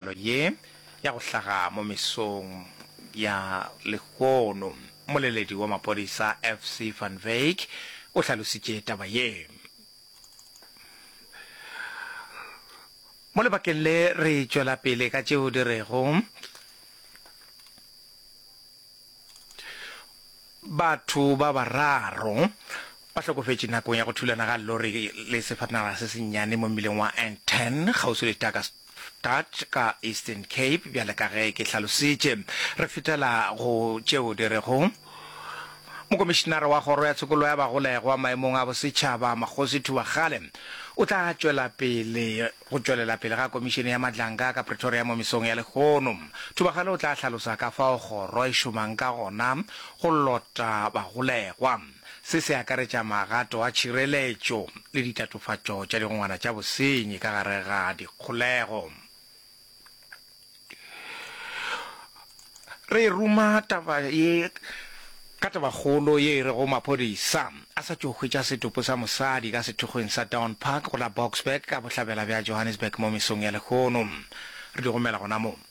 Tiragalo ye ya go hlaga mo mesong ya lehono. Mmoleledi wa maphodisa FC van Wyk o hlalositše taba ye mo lebakeng le re tšwela pele ka tšeo di rego batho ba bararo ba hlokofetše nakong ya go thulana ga lori le sefatanaga se sennyane mo mmileng wa N10 kgauswi le Tucker Stad ka Eastern Cape, bjale ka ge ke hlalositše. Re fetela go tšeo di rego, Mokomišinara wa Kgoro ya Tshokollo ya Bagolegwa maemong a Bosetšhaba, Makgosi Thubakgale, o tla tšwela pele go tšwelela pele ga Komišene ya Madlanka ka Pretoria mo mesong ya lehono. Thubakgale o tla hlalosa ka fao kgoro e šomang ka gona go lota bagolegwa. Se se akaretša magato a tšhireletšo le ditatofatšo tša digongwana tša bosenyi ka gare ga dikgolego. Re ruma taba ye ka tabakgolo ye e rego maphodisa a sa tšo hwetša setopo sa mosadi ka sethokgweng sa Dawn Park go la Boksburg ka bohlabela bja Johannesburg mo mesong ya lehono. Re di romela gona moo.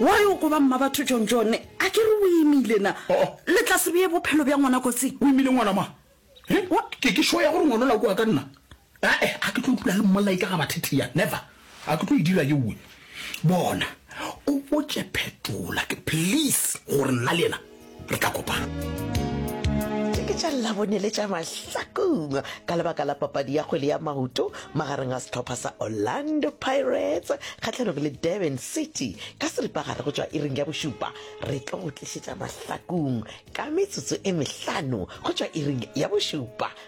wa yo go ba mma batho john john a ke re o imile na oh. le tla se beye bophelo bja ngwana kotsing o imile ngwana ma ke ke sho ya gore ngwana o la koa ka nna ae a ke tlo dula le mmolai ka ga bathetheya never A ke tlo e dira ye win. Bona o botše phetola ke please gore nna le yena re tla kopana. Tše ke tša Labone le tša Mahlakong ka lebaka la papadi ya kgwele ya maoto magareng a sehlopha sa Orlando Pirates kgahlanogo le Durban City ka seripagare go tšwa iring ya bošupa. Re tlo go tlišetša Mahlakong ka metsotso e mehlano go tšwa iring ya bošupa.